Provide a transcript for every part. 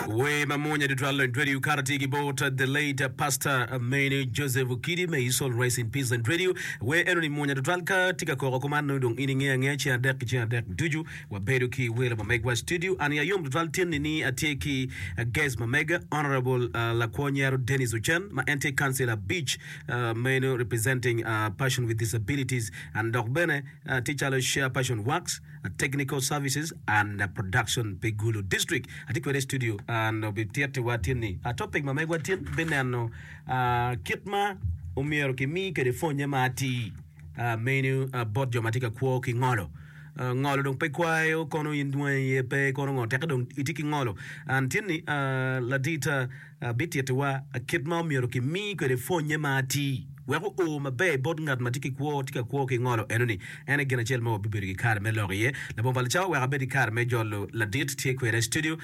Wer mamwonya tutwal Andretti okato tye ki bot the late pastor Mene Joseph Okidi may his soul rest in peace Andretti wer enoni mwonya tutwal ka tye ka koko kuman nongo dong in inge ange ceng adek ki ceng adek ducu wabedo ki welo ma megwa studio ani ayom tutwal tyenni ni atye ki uh, guest ma mega honorable uh, lakwo nyero Dennis Ocen ma en tye council abic uh, meno representing uh, person with disabilities and dok bene uh, tye calo share person works Technical Services and Production pi Gulu District. Atye kwede i studio and obitittiwa tin ni a topic ma megwa tin bineno a, kit ma omyero kimi kwede pwonye ma atir a, meno a, bot jo ma tye ka kwo ki ngolo. A, ngolo dong pe kwayo kono in dwangi iye pe kono ngo teke dong itye ki ngolo and tin ni a, ladit a, bititiwa kit ma omyero kimi kwede pwonye ma atir wek oo maber bot ngat ma tye ki kwo. Tye ka kwo ki ngolo eno ni en aye gin acel ma wabibedo ki kare me lok iye. Labongo pa Licawa oweko abed ki kare me jolo ladit tye kweda i studio.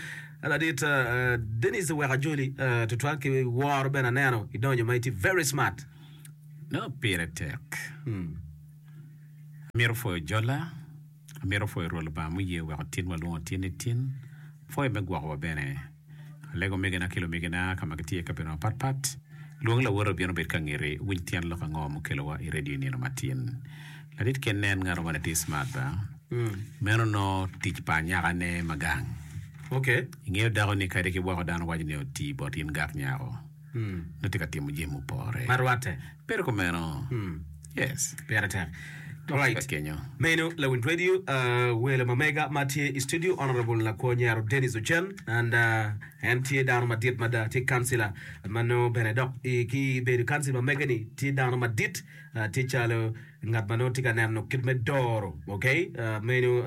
Ladit Dennis oweko ajoli tutwal ki woro bene aneno idonyo ma itye very smart. Nongo pire tek. Amito pwoyo jola. Amito pwoyo Rwot Lubanga muye weko tin walwongo tin ni tin, pwoyo me gwokowa bene. Alego omegina ki lumegina ka ma gitye i kabedo mapatpat. Lwong lawote obino bed ka ngeti, winy tyen lok ango mukelowa i redio i nino matin. Ladit kene en ngat ango ni tye smart ba? Meno onongo tic pa anyakane ma gang. Ingeyo dako ni kadi ki woko dano waco ni oti bot in gak nyako, nongo tye ka timo jami mupore. Bedo kumeno. Hmm. Yes. Pire tek. Alright. Ka kenyo. Meno Lawin Radio, uh, welo ma mega ma tye i studio, Honorable Lakwo Nyero Dennis Ocen, and uh, en tye dano madit mada, tye kansila ma nongo bene dok i, ki bedo kansila ma mega-ni tye dano madit, uh, tye calo ngat ma nongo tye ka neno kit me doro, ok, meno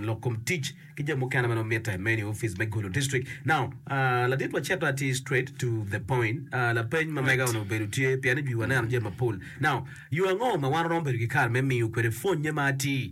lok kom tic ki jami mukene ma nongo mitte, meno i ofice me gulu district. Now, ladit wa cito atir straight to the point, lapeny ma mega onongo obedo tye pien i jwi waneno jami mapol. Now, yo ango ma wan waromo bedo ki kare me miyo kwede pwonye ma atir?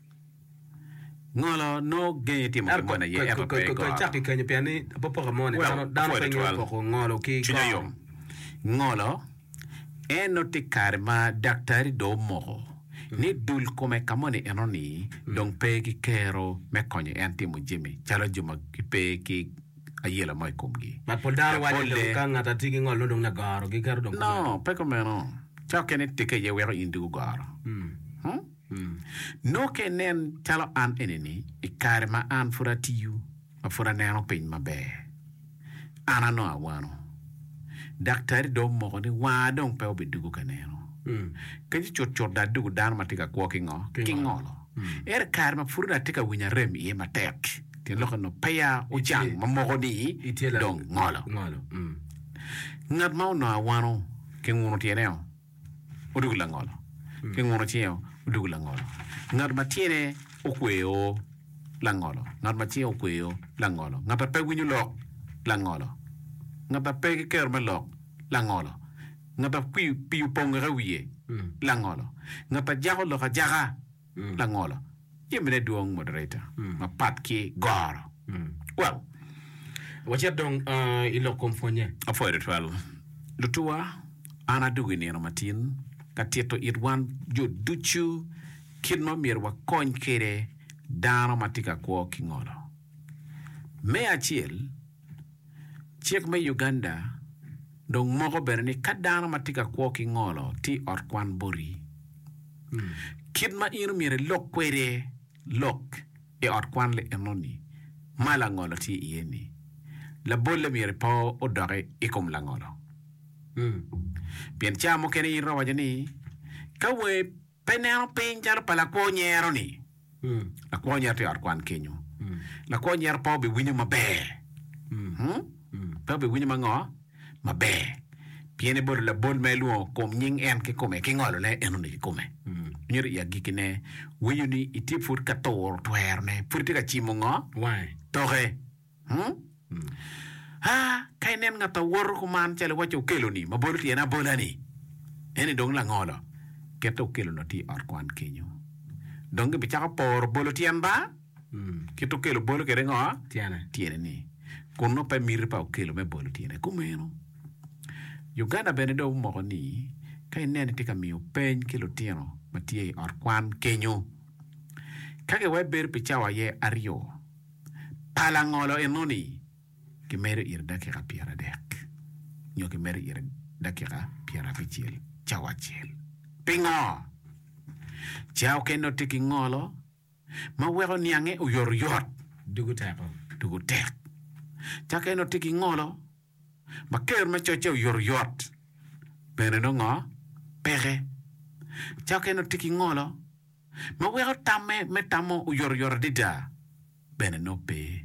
Ngolo nongo genge timo gin mo na ye ento pe goro. Ngolo en nongo tye kare ma daktari dong omoko ni dul kome ka moni enoni dong pe ki kero me konyo en timo jami calo jo ma gipe ki ayela mo i komgi. No, pe kumeno. Cokke ni tikke aye weko in dong gugoro. Nongo ka inen calo an enini i kare ma an pud atiyo, ma pud aneno piny maber, an anongo awano. Daktari dong omoko ni wanga dong pe obidugo ka neno. Penye cutcut dong adugo dano ma tye ka kwo ki ngo? Ki ngolo. Ento i kare ma pud onongo atye ka winyo arem iye matek, tyen lok onongo peya ocang ma moko ni dong ngolo. Ngat ma onongo awano kingunu tyene-o. odoko langolo, ki ngut ociro odoko langolo. Ngat ma tyene okweyo langolo, ngat ma cinge okweyo langolo, ngat ma pe winyo lok langolo, ngat ma pe ki kero me lok langolo, ngat ma pii opongo ki i wiye langolo, ngat ma jako lok ajaka. Langolo, jamine dwong moderator mapat ki goro well. Wacit dong i lok kom pwonye. Apwoyo tutwal lutuwa, an adwogo i nino matin ka tito it wan jo ducu kit ma myero wakony kwede dano ma tye ka kwo ki ngolo. Me acel, Cik me Uganda dong moko bene ni ka dano ma tye ka kwo ki ngolo tye i ot kwan boti, kit ma in omyero ilok kwede lok i ot kwan lienoni ma langolo tye iye-ni, labolle myero pe odoki i kom langolo. Pien ca mukene in iromo waco ni, Ka wangi Pe neno piny calo pa lakwo nyero-ni. Lakwo nyero tye i ot kwan kenyo. Lakwo nyero pe obiwinyo maber. Pe obiwinyo ma ngo? Maber. Pien ebodo labol ma ilwongo kom nying en kikome, ki ngolone enoni kikome. Myero i agikkine, winyo ni itye pud ka turo twerone, pud itye ka cimo ngo? Wange. Toke. Ka inen ngat a woto kuman calo iwacci okeloni ma bolo tyene abola-ni, en-ni dong langolo, kite okelo lotti i ot kwan kenyo. Dong gibicako poro bolo tyen ba, kit okelo bolo kwede ngo? Tyene. Tyene-ni. Kun nongo pe miti pa okelo me bolo tyene kumeno. Uganda bene dong omoko ni ka ineno itye ka miyo peny ki lutino ma tye i ot kwan kenyo, ka giwai bedo pi cawa aye aryo, pa langolo enoni, kimedo ire dakika pyeradek nyo kimedo ire dakika pyerabicel, cawa acel. Pingo? Ca okene otye ki ngolo ma weko niange oyotoyot, dugo teko, dugo tek. Ca okene otye ki ngolo. ma ker ma cocce oyotoyot bene nongo ngo peke. Cokke nongo tye ki ngolo ma weko tamme me tamo oyotoyot adada bene nongo pe.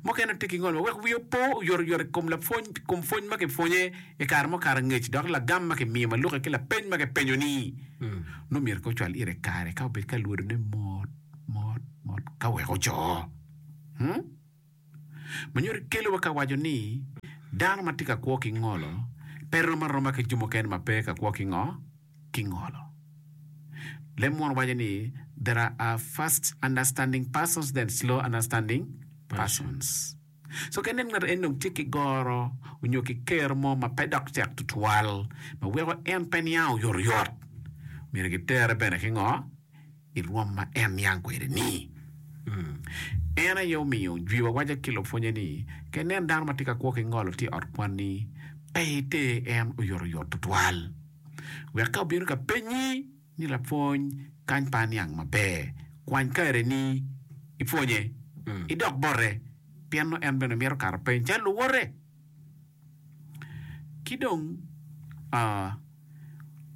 Mukene nongo tye ki ngolo ma weko wiye opo oyotoyot i kom lapwony i kom pwony ma kipwonye i kare mukato angec dok lagam ma kimiyo ma lukke ki lapeny ma kipenyo-ni nongo myero kong ocwal ire kare ka obed ka lwodone mot mot mot ka wek oco. ma nyuto kelo wa ka waco ni dano ma tye ka kwo ki ngolo pe rom aroma ki jo mukene ma pe ka kwo ki ngo? Ki ngolo. Leb Muon waco ni there are fast understanding persons then slow understanding persons. So ka inen ngat en dong tye ki goro onyo ki kero mo ma pe dok tek tutwal ma weko en pe niang oyotoyot, myero ki tere bene ki ngo? i rwom ma en niang kwede-ni. En aye omiyo jwiwa waco ki lupwonnye ni, Ka inen dano ma tye ka kwo ki ngolo tye i ot kwanni, pe iter en oyotoyot tutwal. Wek ka obino ka pennyi ni, 'Lapwony, kany pa aniang maber, kwany kareni ipwonye, idok bote, pien nongo en bene mito kato peny calo luwote. Ki dong,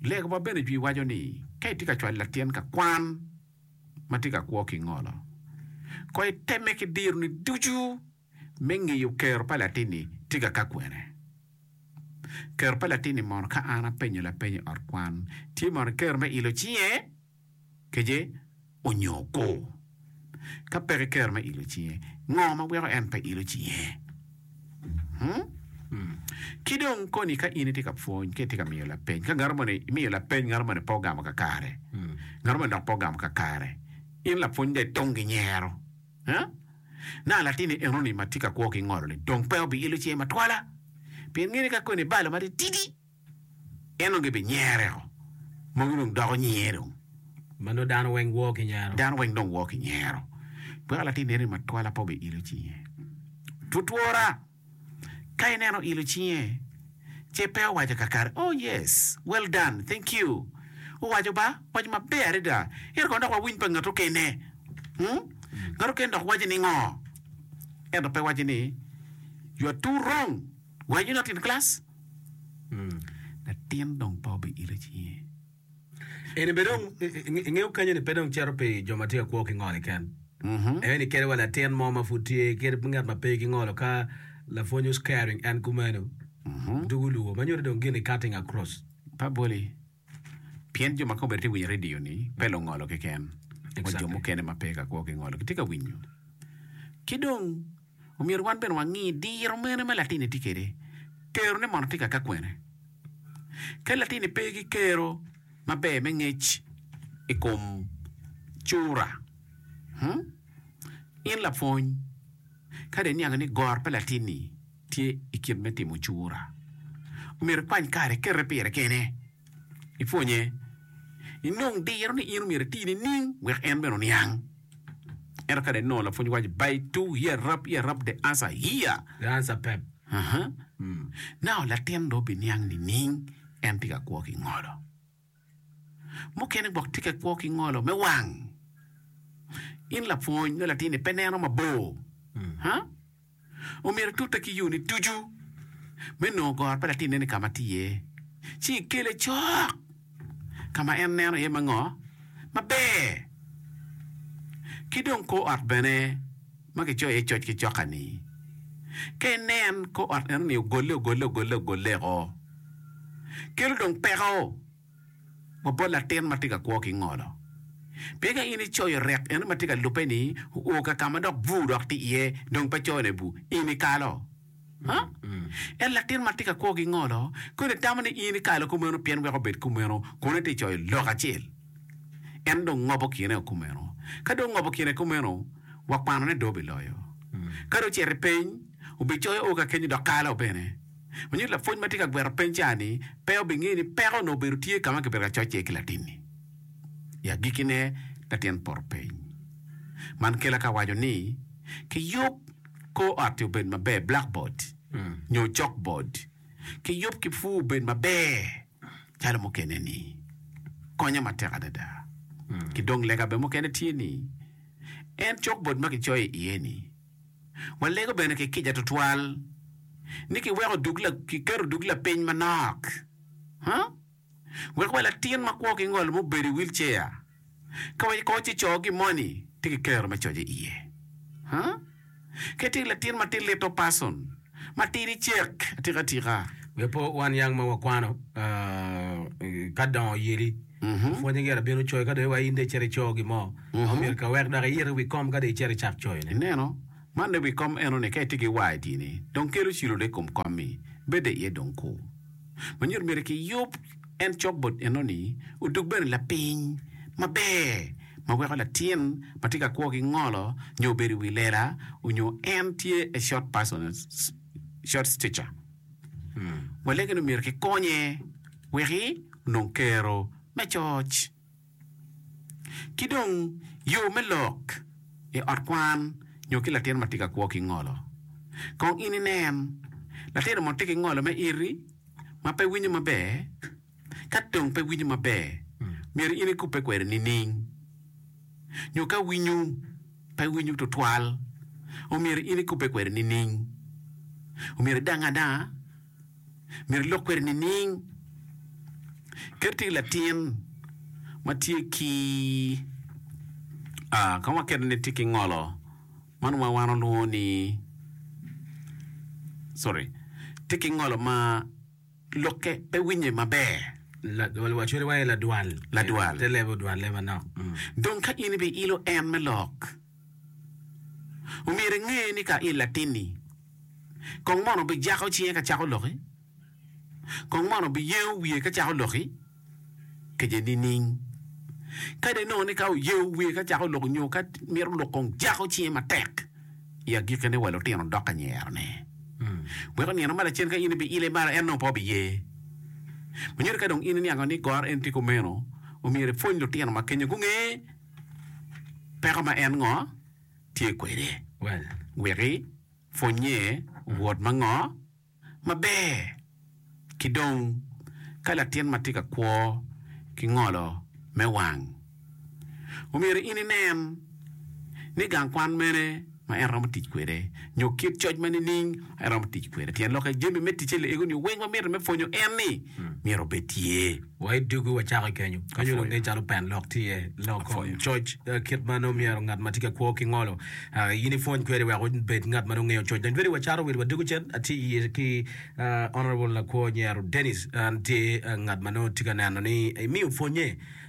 Lega ma bene jwi waco ni, Ka itye ka cwalo latin ka kwan ma tye ka kwo ki ngolo, kono itemme ki dironi ducu me ngeyo kero pa latin-ni tye ka ka kwene. Kero pa latin-ni mono ka an apenyo lapeny i ot kwan tye mono kero me ilo cinge? kece onyo ko? Ka peke kero me ilo cinge, ngo ma weko en pe ilo cinge? Hmm. Ki dong koni ka in itye ka pwony ka itye ka miyo lapeny, ka ngato moni imiyo lapeny ngato moni pe ogamo kakare, ngato moni dok pe ogamo kakare, in lapwony dong itong ki nyero, ha? Nanga latinni enoni ma tye ka kwo ki ngolo-ni dong pe obi ilo cinge matwala? Pien ngeyo ni ka koni balo matitidi. en dong gibi nyere o mogi dong doko nyinge dong. Ma nongo dano weng woo ki nyero. Dano weng dong woo ki nyero. Weko latin neno ni matwala pe obi-ilo cinge. Twotwora, ka ineno ilo cinge, ce pe owaco kakare, Oh, yes! Well done! Thank you! Owaco ba, Owaco maber adada! Ento kono dok wawiny pa ngat okene. Hmm? Ngat okene dok waco ni ngo? Ento pe waco ni, You are too wrong! Wanyu latin kilac, latin dong pe obi ite cinge. Eni bene dong ingeyo kany eni pe dong cito pi jo ma tye ka kwo ki ngoli ken. Eni kede wa latin mo ma pud tye kede ngat ma pe ki ngolo ka lapwony was carrying and kumeno dugu luwo ma nyuto dong gin ni cutting across. Pa boli Pien jo ma kobere tye winyo radio-ni pe lungolo keken, wa jo mukene ma pe ka kwo ki ngolo gitye ka winyo. Ki dong, omyero wan bene wangi diro mene ma latinni tye kwede, kerone mono tye ka ka kwene. Ka latinni pe ki kero maber me ngec i kom cura, in lapwony, kadi aniango ni gor pa latinni tye i kit me timo cura. Omyero ikwany kare ikete pire kene, ipwonye, inong diro ni in omyero iti nining wek en bene oniang. Ento ka dong inongo lapwony waco by to here rap here rap the answer here. The answer pep. Uh-huh. Mm. Now latin dong obiniang nining en tye ka kwo ki ngolo. Mukene gwok tye ka kwo ki ngolo me wang. In lapwony nyo latinni pe neno mabor, ha? Omyero itute ki yoni ducu me nongo goro pa latinneni ka ma tye iye, ci ikele cok ka ma en neno iye me ngo maber. Ki dong kor ot bene. ma kicoyo iye coc ki coka-ni. Ka inen kor ot enoni ogolle ogolle ogolle ogolleko, kelo dong peko wa bot latin ma tye ka kwo ki ngolo. Pien ka in icoyo rek enoni ma tye ka lubbe-ni oo ka ka ma dok bur dok tye iye dong pe coyone bur, in ikalo. Ento latin ma tika kwo gingolo, kodi itamo ni in ikalo kumeno pien weko obed kumeno, kono ite coyo lok acel. En dong ngobo kine o kumeno. Ka dong ongobo kine kumeno, wakwano ni dong obiloyo. Ka dong ocito i peny, obicoyo o kakenyo dok kalo bene. Onyuto lapwony ma tye ka gwero peny ca ni pe obingeyo ni peko onongo obedo tye ka ma kibedo ka coc iye ki latin-ni. I agikkine, latin poto peny. Man kela ka awaco ni, Kiyub. Kor ot-ti obed maber, blackboard nyo chalkboard kiyub ki pur obed maber calo mukene-ni. Konye matek adada. Ki dong lega bene mukene tye ni, en chalkboard ma kicoyo iye-ni, walego bene ki kica tutwal ni kiweko dug la, kiketo dug lapiny manok. Huh? Wek wa latin ma kwo ki ngol mubedo i wheelchair, ka wa kor ci co gi moni tye ki kero me coce iye. Huh? Kadi tye ki latin ma tye little person, ma tidi cek atika tika. Wek po wan yang ma wakwano ka dongo oyeli, pwonye gire bino coyo. Ka dong iwa in dong icito ico gin mo, ma omyero ka wek dok iite i wi kom ka dong icito icak coyone. Ineno? Man i wi kom enoni ka itye ki YD-ni, dong kelo cilone i kom kom-mi, bed de iye dong kur. ma nyuto myero kiyub en cok bot enoni odug bene lapiny maber ma weko latin ma tye ka kwo ki ngolo nyo obedo i wi lela onyo en tye a short person, short stature walege ni myero kikonye weki onong kero me coc. Ki dong, yo me lok i ot kwan nyo ki latin ma tye ka kwo ki ngolo. Kong in inen, Latin mo tye ki ngolo me iti ma pe winyo maber? Ka dong pe winyo maber, myero in ikubbe kwede nining? Nyo ka winyo pe winyo tutwal, omyero in ikubbe kwede nining? Omyero idang adanga? myero ilok kwede nining? Kadi tye ki latin ma tye ki ka waketo ni tye ki ngolo ma nongo wan walwongo ni sorry tye ki ngolo ma lokke pe winye maber. Wacodo iwaci ladwal. Ladwal. Te lebe odwal lebe manok. Dong ka in ibiilo en me lok. Omyero inge ni ka i latinni, kong mono bijako cinge ka cako loki, kong mono biyengo wiye ka cako loki kece nining? Kadi inongo ni ka oyengo wiye ka cako loki nyo ka mito lok kong jako cinge matek, i agikine wa lutino dok ka nyerone. Weko nino ma lacen ka in ibi ile malo en nongo pe obiye. Manyo ni ka dong in iniango ni gor en tye kumeno, omyero ipwony lutino ma kenyo gunge. peko ma en ngo tye kwede wek i pwony nye wot ma ngo ma ber ki dong ka latin ma tye ka kwo ki ngolo me wang omyero in inen ni gang kwan mene. ma en romo tic kwede, nyo kit coc ma nining en romo tic kwede. Tyen lok i jami me ticce luege nio weng ma mitte me pwonyo en ni myero obed tye. Wa i dugu wacako kenyo ka nyo luge calo pen lok tye lok kom coc kit ma nongo myero ngat ma tye ka kwo ki ngolo in ipwony kwede wek obed ngat ma nongo ngeyo coc. Dong tweri wacaro wil wa dugu cen atye iye ki Honourable Lakwo Nyero Dennis, en tye ngat ma nongo tye ka neno ni imiyo pwonye.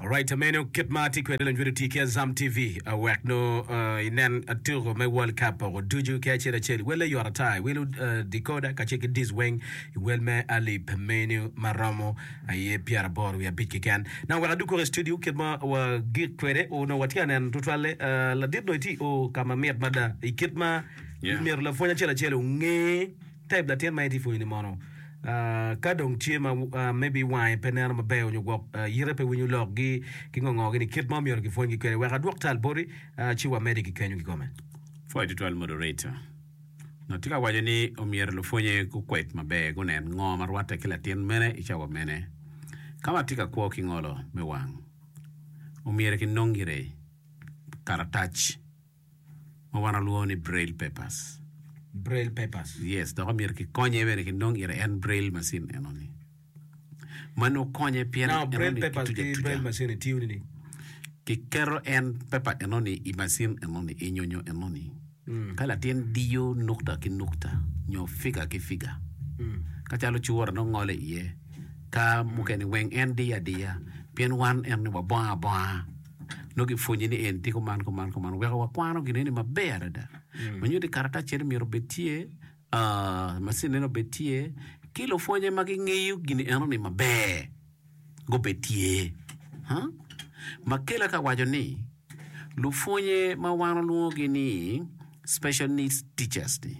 Alright meno kit ma atye kwede lanyut otii ki Azam TV uh, wek nongo uh, inen uh, tuko me World Cup oko ducu ki acel acel. Wel ayot ata iwelo uh, decoder kacel ki dish weng iwel me Alip menu ma romo aye pyeraboro wiye abic keken. Na wek adug koko i studio kit ma wagik kwede o nongo watye ka neno tutwalle uh, ladit nongo itye o ka ma mit mada i kit ma Yeah. myero lapwony acel acel onge Type latin ma itye pwonyo ni mono ka dong tye ma maybe wange pe neno maber onyo gwok yite pe winyo lok gi ki ngo ngo gi ni kit ma omyero ki pwony gi kwede wek adwok tal boti ci wa medi ki kenyo ki kome. Pwoyo tutwal moderator no tye ka waco ni omyero lupwonye gu kwed maber gu nen ngo ma rwatte ki latin mene i cawa mene ka ma tye ka kwo ki ngolo me wang omyero ki nong gire karatac ma wan walwongo ni Braille papers. Braille papers. Yes, dok omyero kikonye bene ki nong ire en Braille machine eno ni. Man okonye pien Now, Braille papers ki Braille machine ni tiyo nini? Kiketo en paper eno ni i machine eno ni, i nyonyo eno ni. Mm. Ka latin diyo nukta ki nukta, nyo figa ki figa. Mm. Ka calo cura nong ngole iye, ka mukene weng en diyo adiya, pien wan eno ni wabongo abonga. nongo gipwonye ni en tye kuman kuman kuman weko wakwano gin eni maber adada mm. manyo ni karataccere myero obed tye uh, masin eno obed tye ki lupwonye ma gingeyo gin eno ni maber gubed tye huh? makela ka waco ni lupwonye ma wan olwongogi ni special needs teachers ni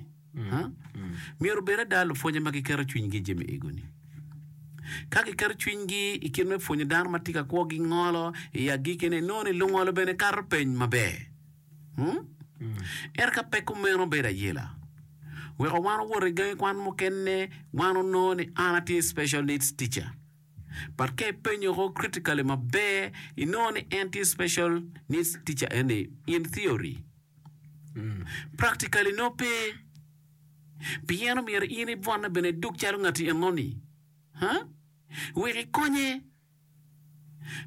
Myero obed ada lupwonye ma giketo cwinygi i jami ego-ni. Ka giketo cwinygi i kit me pwonyo dano ma tye ka kwo gingolo, i agikine inongo ni lungolo bene kato peny maber. Ento ka pe kumeno bedo ayela. Weko wan owot i gangi kwan mukene, wan onongo ni an atye special needs teacher. but ka ipenyo ko critically maber inongo ni en tye special needs teacher eni in theory practically nongo pe pien omyero in ibwonne bene iduk calo ngati enoni ha wek ikonye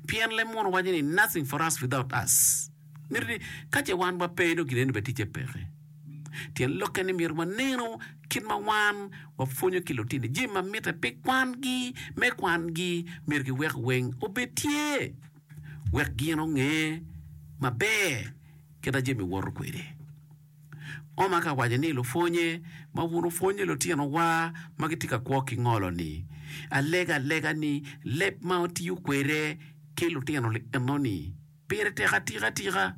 pien leb muno waco ni nothing for us without us miti ni ka ce wan wape dong gin eni bene ticce peke Tyen lokke ni myero wanenu kit ma wan wapwonyo ki lutini jami ma mitte pi kwangi. Me kwangi, myero giwek weng obed tye wek gin onge maber kit ma jami woto kwede. Oma ka waco ni lupwonnye ma wun wupwonyo lutinowa ma gitye ka kwo ki ngolo-ni, alega alega ni leb ma wutiyo kwede ki lutino enoni, Pire tek atika tika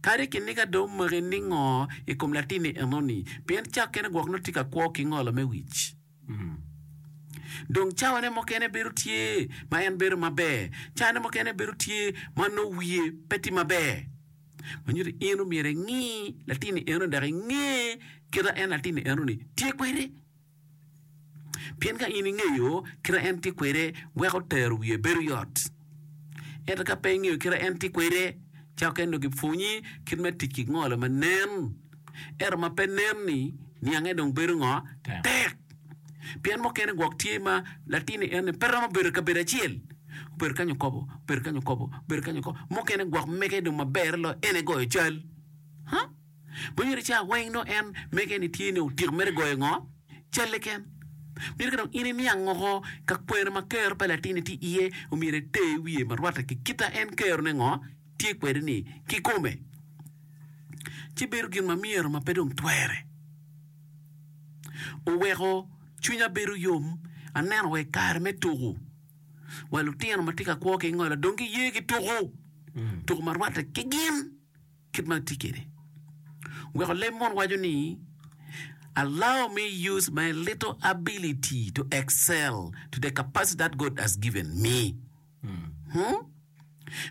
kadi kiniga dong omaki ningo i kom latinni enoni, pien cakkene gwok nongo tye ka kwo ki ngolo me wic. Dong cawane mukene bedo tye ma en bedo maber, cawane mukene bedo tye ma nongo wiye pe tye maber. Ma nyuto in omyero ingi latinni enoni dok inge kit ma en latinni enoni tye kwede. Pien ka in ingeyo kite en tye kwede, weko tero wiye bedo yot. Ento ka pe ingeyo kite en tye kwede, cako kene dong gipwonyi kit me tic ki ngolo ma nen, ento ma pe nen-ni, niange dong bedo ngo? Tek. Pien mukene gwok tye ma latinni en-ni pe romo bedo i kabedo acel, obedo kany okobo, obedo kany okobo, obedo kany okobo, mukene gwok mege dong maberre loyo en-ni goyo cal. Pwony mere ca weng dong en mege en ni tye ni otyeko mere goyo ngo? Calle ken. Myero ka dong in iniang woko ka kwena ma kero pa latinni tye iye omyero iter wiye ma rwatte ki kita en kero ne ngo tye kwede ni ki kome. Ci bedo gin ma myero ma pe dong twere. Oweko cwinya bedo yom aneno wa i kare me tuku wa lutino ma tye ka kwo ki ngolo dong giye ki tuku, tuku ma rwatte ki gin. kit ma atye kwede. Weko leb mon waco ni, Allow me use my little ability to excel to the capacity that God has given me. Hmm?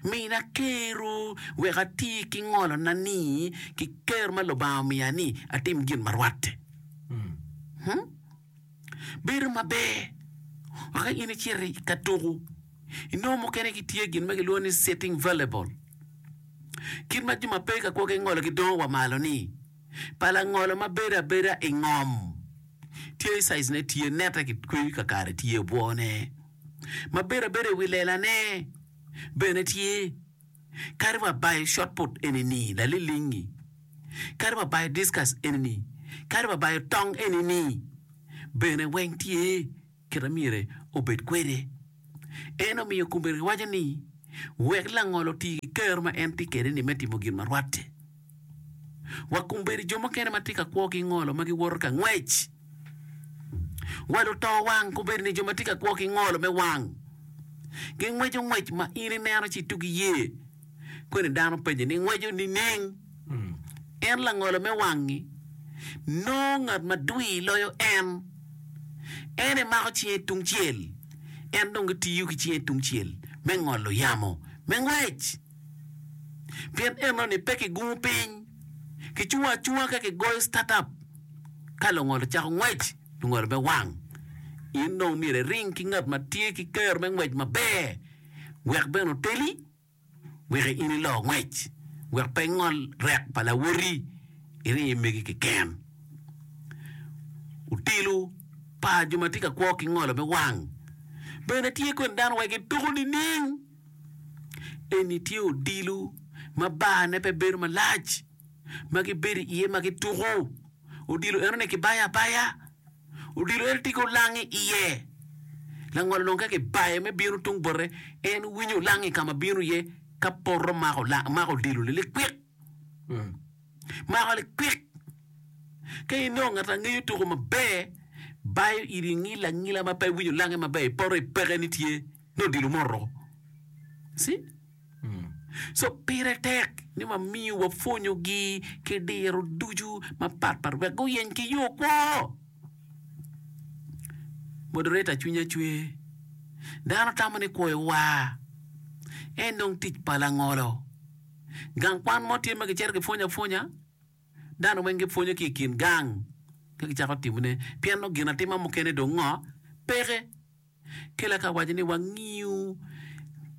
Mina kero wek ati ki ngolona ni ki kero ma Lubanga omiya ni atim gin ma rwatte. Hmm? bedo maber wek ka in icito i ka tuko inongo mukene gitye gin ma kilwongo ni sitting volleyball kit ma jo ma pe ka kwo ki ngolo gidongo wa malo ni pa langolo ma bedo abeda i ngom tye caic ne tye nette ki kweyo kakare tye obwone ma bedo abeda i wi lelane bene tye. Kadi wa bayo shotput eni ni lalilingi. Kadi wa bayo discus eni ni. Kadi wa bayo tong eni ni. Bene weng tye kite myere obed kwede. En omiyo kombeddi waco ni, Wek langol oti ki kero ma en tye kede ni me timo gin ma rwatte. Wa kombeddi jo mukene ma tye ka kwo ki ngolo ma giwoto ka ngwec. Wa luto wang kombeddi-ni jo ma tye ka kwo ki ngolo me wang. Gingweco ngwec ma in ineno ci itugi iye. Kweni dano penye ni, Ingweco nining? En langolo me wang-ngi. Nongo ngat ma dwir loyo en. En emako cinge tungcel, en dong etiyo ki cinge tungcel me ngolo yamo me ngwec. pien enoni pe kigungo piny, kicungo acunga ka kigoyo start up. Ka lungolo cako ngwec, lungolo me wang, in dong myero iring ki ngat ma tye ki kero me ngwec maber wek bene oteli wek in ilo ngwec, wek pe ingol rek pa lawoti iring i megi keken. Otelo pa jo ma tye ka kwo ki ngolo me wang bene tye kwede dano wek gituko nining? Eni tye odilo ma barne pe bedo malac, ma gibedo iye ma gituko. Odilo enoni kibayo abaya. Odilo eno tye ki olang i iye. Langolo dong ka kibaye me bino tung bote, en winyo olang i ka ma bino iye ka poto mako olang, mako odilo-ni likwik. Mako likwik. Ka inongo ngat a ngeyo tuko maber, bayo iri ingila angila ma pe iwinyo olange maber, ipoto ipeke ni tye nongo odilo moto. See? Mm. So pire tek ni wamiyo wapwonyogi ki diro ducu mapatpat wek guyeny ki yo kwo. Moderator cwinya cwe. Dano tamo ni kwoyo wa. En dong tic pa langolo. Gang kwan mo tye ma gicito gipwonyo apwonya. Dano weng gipwonyo ki i kin gang ka gicako timone. Pien nongo ginatima mukene dong ngo peke. Kela ka waco ni wangiyo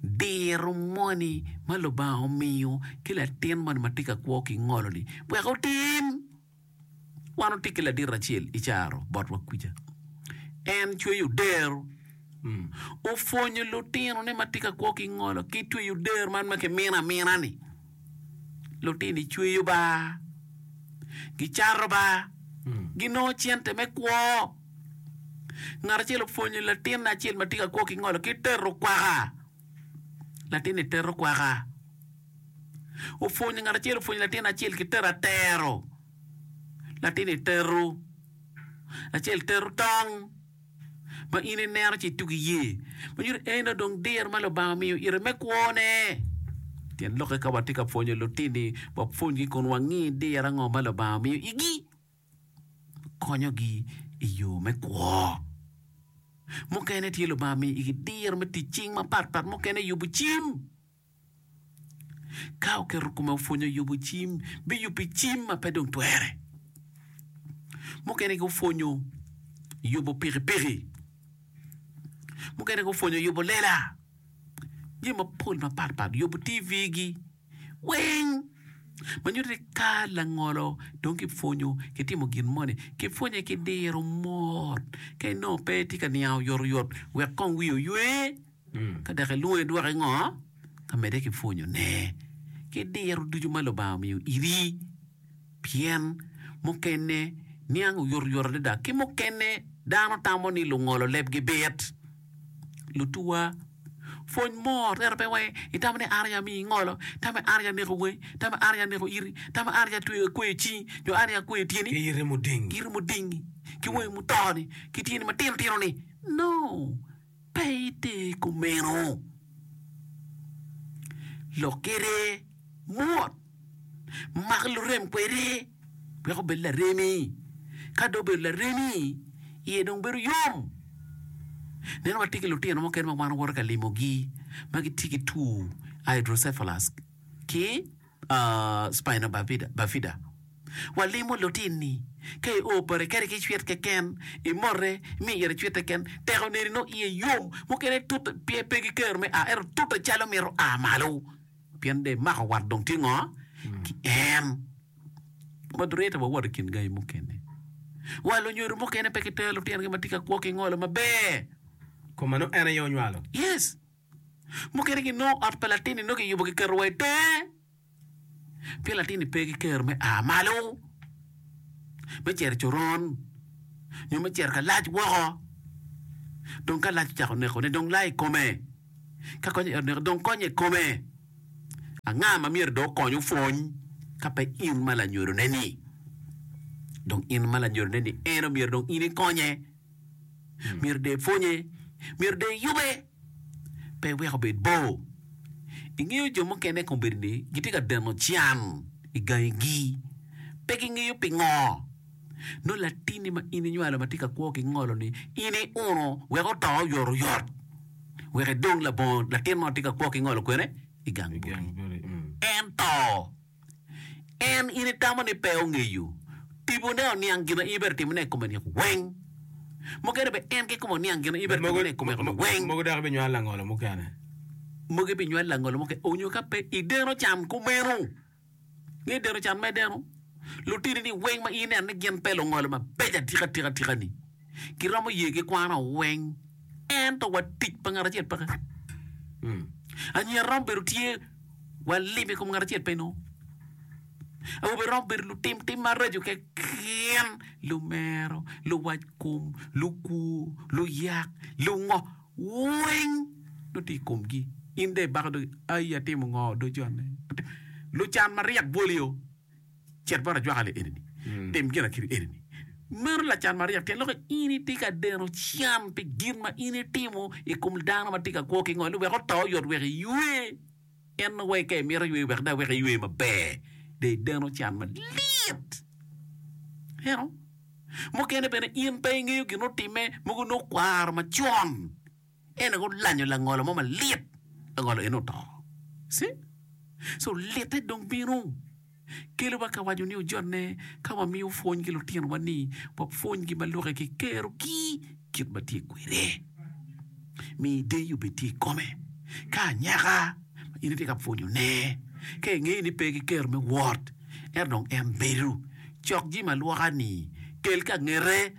diro moni ma Lubanga omiyo ki latin moni ma tye ka kwo ki ngolo-ni wek otim. Wan watye ki ladiro acel i caro botwa kuca. En cweyo dero. Opwonyo lutinone ma tye ka kwo ki ngolo ki tweyo dero man ma kimino amina-ni. Lutini cweyo ba, gicato ba, ginongo cente me kwo. Ngat acel opwonyo latinne acel ma tye ka kwo ki ngolo ki tero kwaka. Latinni tero kwaka. Opwonyo ngat acel opwonyo latin acel ki tero atero. Latinni tero. Acel tero tong ma in ineno ci itugo iye. Ma nyuto ni eno dong diro ma Lubanga omiyo ite me kwone. Tyen lokke ka watye ka pwonyo lutinni, wapwonygi kun wangi diro ango ma Lubanga omiyo igi. konyogi i yo me kwo. Mukene tye Lubanga omiyo igi diro me tic cing mapatpat, mukene yubo cim. Ka oketo kome opwonyo yubo cim, biyubbi cim ma pe dong twere. Mukene gupwonyo yubo pikipiki, mukene gupwonyo yubo lela. jami mapol mapatpat yubo TV gi weng ma nyuto ni ka langolo dong kipwonyo kitimo gin moni kipwonye ki diro mot ka inongo pe itye ka niang oyot oyot wek kong wiyi oywe ka dok ilwongo idwoke ngo ka medde ki pwonyone ki diro ducu ma Lubanga omiyo iri pien mukene niang oyot oyot adada ki mukene dano tamo ni lungolo lebgi bit. Lutuwa, pwony mo ryero pe wai. Itamo ni an aye amiyo ingolo? Itamo ni an aye aneko wangi? Itamo ni an aye aneko iti? Itamo ni an aye atweyo akweyo cingi nyo an aye akweyo tyeni? Ki iti mudingi. Iti mudingi, ki wangi muto-ni, ki tyeni matino tino-ni? No, pe ite kumeno. Lok kwede mot. Mak lurem kwede wek obed laremi. Ka dong obedo laremi, iye dong bedo yom. Neno watye ki lutino mukene ma wan owoto ka limogi ma gitye ki two hydrocephalus ki spina bifida. Walimo lutinni ka i o bati kadi ki cwit keken, imote, imiyo ite cwit keken, tek oneni nongo iye yom. Mukene tute pe gikero me a ento tute calo mito a malo. Pien de mako wat dong tye ngo ki en? Moderator wa wot i kin gangi mukene wa lunyodo mukene pe gitero lutino gi ma tye ka kwo ki ngolo ma ber. Ko ma nongo en aye onywalo. Yes. Mukene gi nongo ot pa latin ni nongo ki yubo ki keto wa i tenge. Pien latin ni pe ki kero me aa malo. Me cero i coron. Nyo me cero ka lac woko. Dong ka lac ocako neko ne dong laa i kome. Ka konye i ot mego, dong konye i kome. Anga ma myero dong okony opwony ka pe in ma lanyodone-ni? Dong in ma lanyodone-ni, en omyero dong in ikonye. Myero dong ipwonye, myero dong iyube, pe wek obed bor. Ingeyo jo mukene i kombeddi-ni gitye ka deno can i gangigi, pe gingeyo pingo. Nongo latinni ma in inywalo ma tye ka kwo ki ngolo-ni, in iuno wek oto oyotoyot, wek edong labongo latin ma tye ka kwo ki ngolo kwene i gang boti. Ento, en in itamo ni pe ongeyo tibone oniang gin ma in ibedo timone i kome ni weng. Mukene be en ki kome oniang gin ma in ibedo timone i kome ni weng. Mogo dok binywal langolo mukene. Mogo binywal langolo mukene onyo ka pe ideno can kumeno. Ni deno can me deno, lutinini weng ma ineno ni gin pe lungolo mabeco atika atika atika-ni, giromo ye ki kwana weng, ento wa tic pa ngat acel peke. Mm. Anyira romo bedo tye wa lim i kom ngat acel pe no. Awobe romo bedo lutim tim maraco keken, lumero, luwac kom, lukwo, luyak, lungo. weng nongo tye i komgi. In dong ibako dogi, 'Ai, atimo ngo? Dong jone atim. Lucan maryek bwoli o, cit bot ajwaka le eni-ni, tim ginakiri eni-ni. Meno lacan maryek pien loko in itye ka deno can pi gin ma in itimo i kom dano ma tye ka kwo ki ngoli wek oto oyot wek iywe. Pien wek ka imito ywe wek dok wek iywe maber, dong ideno can malit. Ineno? Mukene bene in pe ingeyo gin otime, mogo nongo kwaro macon. En gulanyo langolo mo malit, langolo eno oto. Si? So litte dong bino. kelowa ka waco ni ojonne ka wamiyo pwony ki lutinowa ni wapwonygi ma lok ki kerogi kit ma tye kwede. Mi deyi obed tye i kome. Ka anyaka ma in itye ka pwonyone, ka ingeyo ni pe ki kero me wot, ento dong en bedo, cok jami ma lwoka-ni, kel ka ngete.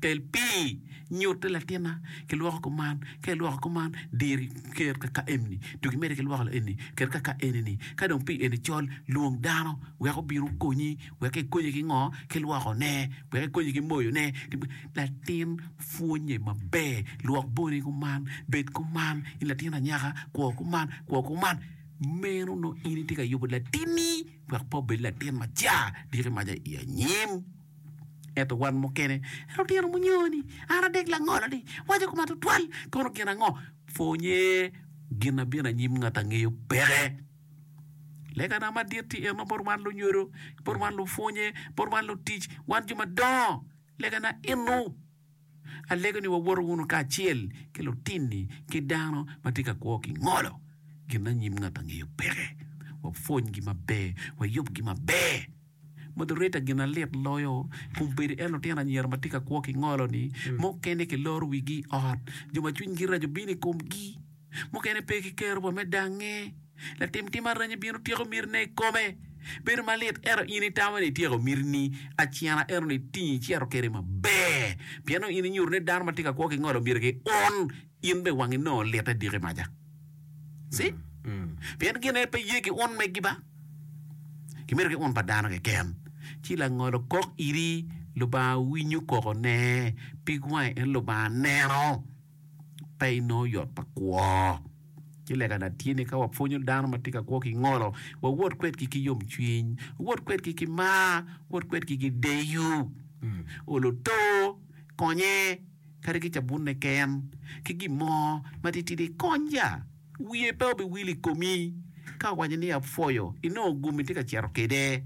Kel pii, nyutte latinna, kilwoko kuman, ka ilwoko kuman, diri ker kaka eni-ni, dong imedde ki lwoko eni, ker kaka eni-ni. Ka dong pii eni col, lwong dano wek obin okonyi, wek ekonyi ki ngo? Ki lwokone, wek ekonyi ki moyone. Latin pwonye maber, lwok boni kuman, bed kuman, in latin anyaka, kwo kuman, kwo kuman. Meno nongo in itye ka yubo latinni wek pe obed latin macar, diki maca i anyim. Ento wan mukene, lutino munyoni, an adek langolo-ni, waco kuma tutwal, kono gin ango? Pwonye gin abino anyim ngat angeyo peke. Legana madit tye eno bot wan lunyodo, bot wan lupwonye, bot wan lutic, wan jo madongo. Legana eno, alego ni wawoto wunu kacel ki lutinni ki dano ma tye ka kwo ki ngolo. Gin anyim ngat angeyo peke. Wapwonygi maber, wayubgi maber. Moderator gin alit loyo kun bedo en lutino anyira ma tye ka kwo ki ngolo ni mukene ki loro wigi i ot jo ma cwiny gi raco bino i kom gi mukene pe ki kero wa me dange latim tim aranyi bino tyeko miti ne i kome bedo malit ento in i tamo ni i tyeko miti ni acena ento ni tingi i cito kede maber pien nongo in i nyuto ni dano ma tye ka kwo ki ngolo myero ki un In be wangi nongo lite diki maca? See? Pien gin aye pe ye ki un megi ba? Gimido ki un pa dano keken. Ci langolo kok iri, Lubanga winyo koko ne, pig wange en Lubanga neno, pe inongo yot pa kwo. Ci lega na tye ni ka wapwonyo dano ma tye ka kwo ki ngolo, wawot kwedgi ki yom cwiny, wawot kwedgi ki mar, wawot kwedgi ki deyo. Olo to, konye. kadi ki cabunne ken, ki gin mo matitidi, kony ya. Wiye pe obiwil i komi ka owaco ni, 'Apwoyo, inongo gum itye ka cito kwede.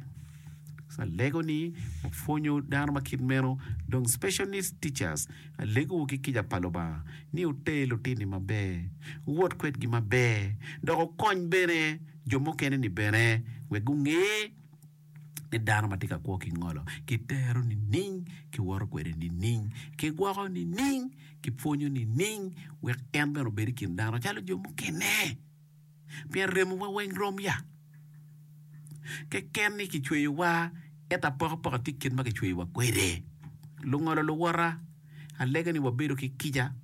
Alego ni wapwonyo dano ma kit meno, dong Special Needs Teachers, alegowu ki kica pa Lubanga ni wuter lutinni maber, wuwot kwedgi maber, dok wukony bene jo mukene-ni bene wek gunge. ki dano ma tye ka kwo ki ngolo, kitero nining, kiwoto kwede nining, kigwoko nining, kipwonyo nining, wek en bene obed i kin dano calo jo mukene. Pien remowa weng rom ya? Keken ni kicweyowa, ento apokapok tye kit ma kicweyowa kwede. Lungolo luwota, alega ni wabedo ki kica.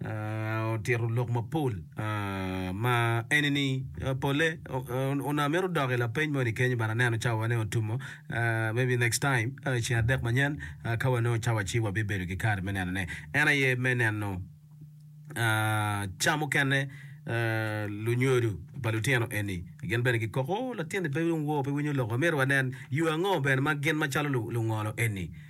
otito lok mapol ma eni ni pole onongo amito dok i lapeny moni kenyo but aneno cawa ne otumo maybe next time ceng adek manyen ka wanongo cawa ci wabibedo ki kare me nenone en aye me neno ca mukene lunyodo pa lutino eni gin bene gikoko latinni pe dong wor pe winyo loko myero wanen yo ango bene ma gin macalo lungolo eni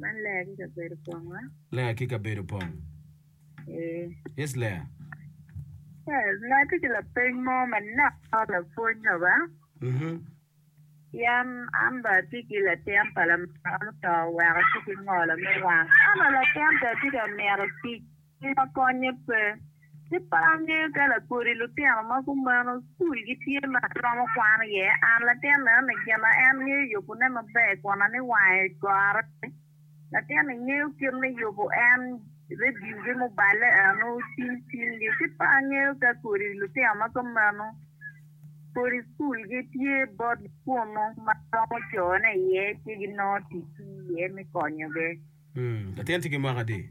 Man ler ki kabedo pong ma. Ler ki kabedo pong. Ee. Yes, ler. Ee, nga tye ki lapeny mo manok ma lapwony yo ba? Mhm. Yan an ba atye ki latin pa lamego muto oweko atye ki ngolo me wang. Ento latin pe atye ka mito tic. Nino konye pe. Ci pe angeyo ka lakodi lutino ma kumeno cul gi tye ma romo kwano iye. An latin neno ni gin na en ngeyo yubu ne maber kona ni wange gore. Latin ni ngeyo kit me yubu en review gi muballe eno cing cing gi. Ci pe angeyo ka kodi lutino ma kumeno kodi cul gi tye bot gi kunu ma romo cone iye ci ginongo tic ki iye me konyo gi. Latin tye ki mwaka adi?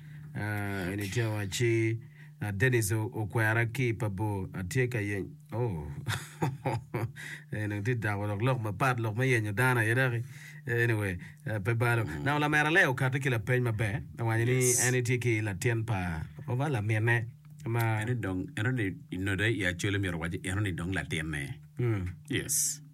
Anytime I see uh, Dennis o- okwera ki pa bor, atye ka yeny. Oh, eh, dong tye dako dok lok mapat, lok me yenyo dano aye dok. Eh, Anyway, eh, pe balo. Na lamera Lea okatte ki lapeny maber, awanyo ni Yes. en itye ki latin pa oba laminne ma Eno dong, eno ni, i note i Acholi myero owac ni eno ni dong latinne. Mm. Yes.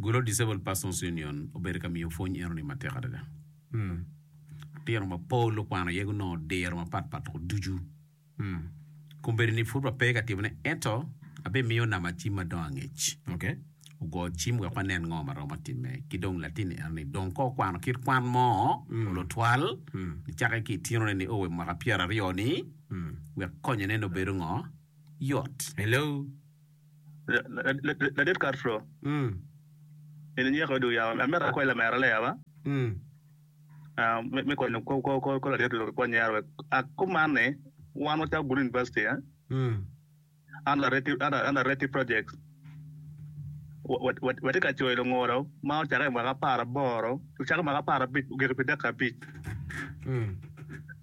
Golo Disabled Persons Union obedo ka miyo pwony enoni matek adada. Litino mapol okwano iye gunongo diro mapatpat tuku ducu. Kombeddi-ni pud wape ka timone ento abimiyo nama cim ma dong angec. Okay. Ogo cim wek wanen ngo ma romo timme. Ki dong latin-ni enoni dong ka okwano kit kwan mo olo twal nicakke ki itinone ni owe mwaka pyeraryo-ni wek konyone ni obedo ngo? Yot. Hello. Ladit Castro eni nyeko i dog yamo. Amito akwayi lamera leya ba me konyo kor ladit lok i kor nyero wek akuman ni wan wacako Gulu University under Reti Projects. Watye ka coyo lungulo ma ocake i mwaka apar aboro ocake i mwaka apar abic ogik pi deka abic.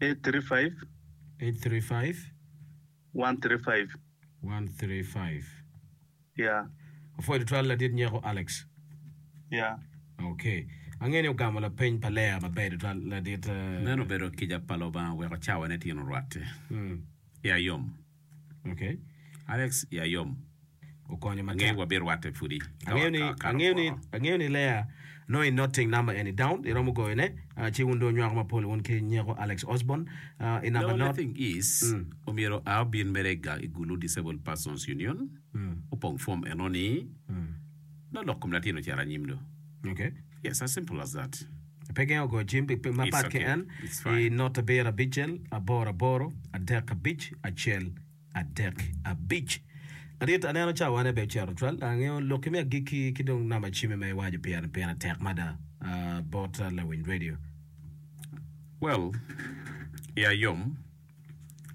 Eight three five. Eight three five. One three five. One three five. Yeah. Apwoyo tutwal ladit nyeko Alex. Yeah. Okay. Angeyo ni ogamo lapeny pa Leah maber tutwal ladit. Meno obedo kica pa Lubanga weko cawane tyen orwatte. Yeah, yom. Alex ya yom okonyo matek. Angeyo wa bi rwate pudi ka wa kato kwoko. Angeyo ni Lea nongo i noting number eni down i romo goyo ne ci wun dong nywako mapol wun ki nyeko Alex Osborn i number not. No the thing is omyero a obin mere ga i Gulu Disabled Persons Union opong form eno ni nongo lok kom latin ocito anyim do. Yes as simple as that. Pe gin ogoyo cim pi pim mapat ki en i not abiro abicel aboro aboro adek abic acel adek abic. Madit, aneno cawane bene ocito cwal. Dok angeyo lok ki me agikki ki dong namba cimme ma iwaco pire-ni pire tek mada bot lawiny redio. Well, iya yom,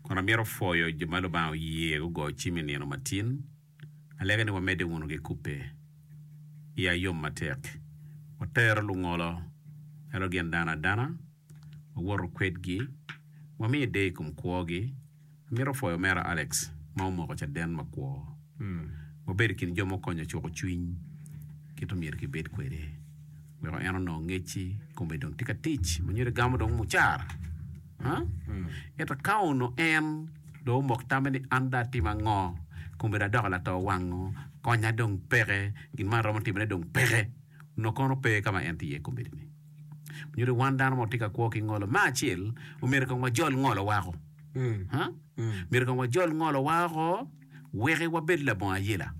kun amito pwoyo jo ma Lubanga oye gugoyo cim i nino matin. Alege ni wamedde wunu ki kubbe i ayom matek. Watero lungolo, ento gin dano adana, wawoto kwedgi, wamiyo deyo i kom kwogi. Amito pwoyo omera Alex ma omoko caden makwo. Wabedo i kin jo ma okonyo cuko cwiny kit omyero kibed kwede weko en onong ngecci kome dong tye ka tic ma nyuto egamo dong mucara. Ento ka onongo en dong omok tamme ni, 'An dong atim ango? Kombeddi adoko lato wango, konya dong peke, gin ma aromo timone dong peke, onongo kono pe ka ma en tye iye kombeddi-ni. Nyuto ni wan dano ma watye ka kwo ki ngolo, me acel, omyero kong wajol ngolo woko. Myero kong wajol ngolo woko wek wabed labongo ayela.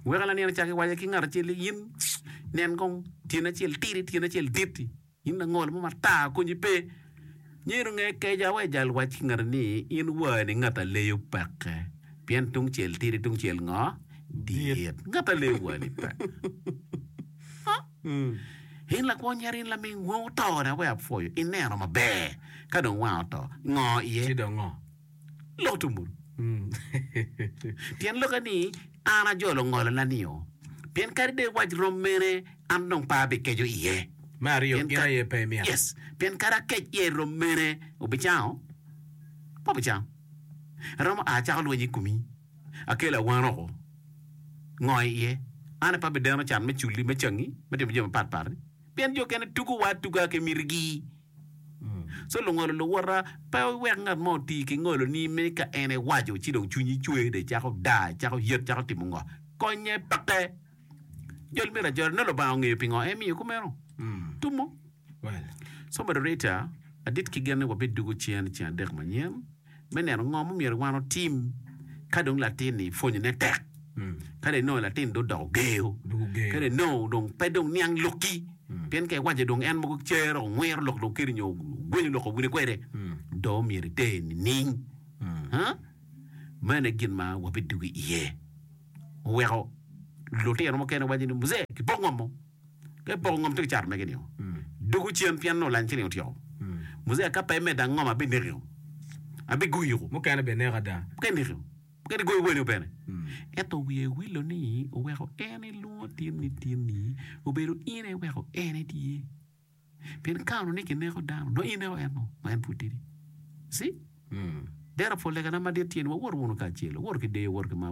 Weko laniang icako iwaco ki ngat acel ni, 'In nen kong, tyeni acel tidi, tyeni acel dit-ti. In langol mo matar, konyi pe. Nyer onge keca wa ijal wac ki ngati ni, In wani ngat a leyo peke, pien tungcel tidi tungcel ngo? Dit. Ngat a leyo wani pe. Huh? In lakwo nyer, in laming wang oto na wek apwoyo, ineno maber ka dong wang oto, ngo iye? Ci dong ngo? Lok tung bur. Tyen lokke ni, An ajolo ngolona nio, pien kadi dong iwac rom mene, an dong pe abikeco iye. Me aryo, Pien gin ka- aye pe imito. Yes, pien kadi akec iye rom mene, wubicango? Pe wubicango. Aromo a acako lweny i komi, akelo awan oko. Ngo iye? An pe abideno can me culi, me cangi, me timo jami mapat pati, pien jo kene tugo wa atuga ki mitigi. So lungolo luwota pe wek ngat mo oti ki ngoloni me ka en ewaco ci dong cwinyi cwer dong icako daa, icako yet, icako timo ngo? Konye peke. Jol myero ajol. Nongo Lubanga ongeyo pingo emiyo kumeno. Tumo. So moderator, adit ki gen ni wabiddugo cen ceng adek manyen. me neno ngo ma myero wan otim ka dong latin-ni pwonyone tek, ka dong inongo latin-ni dong odoko geyo, ka dong inongo dong pe dong niang lokki, pien ka iwaco dong en mogo cer, ongwiro lok dong keri nyo ogwenyo lok owine kwede, do myero iter nining? Ha? Meno aye gin ma wabidwogo iye. Oweko lutino mukene waco ni, Muzee, kipoko ngom mo. Ka ipoko ngom tek cato mege nio, duku cen pien nongo lany cene otyeko. Muzee ka pe imedda ngom abinekio, abiguyiko. Mukene bene neko ada. Mukene nekio, mukene igoyo welo bene. Ento wiye iwilo ni oweko en elwongo tin ni tin ni obedo in aye weko en etye. Pien ka onongo ni kineko dano, nongo in ineko en-nu, ma en pud tidi. See? Dero pol lega na madit tye ni wawot wunu kacel, wawot ki deyo, wawot ki mar.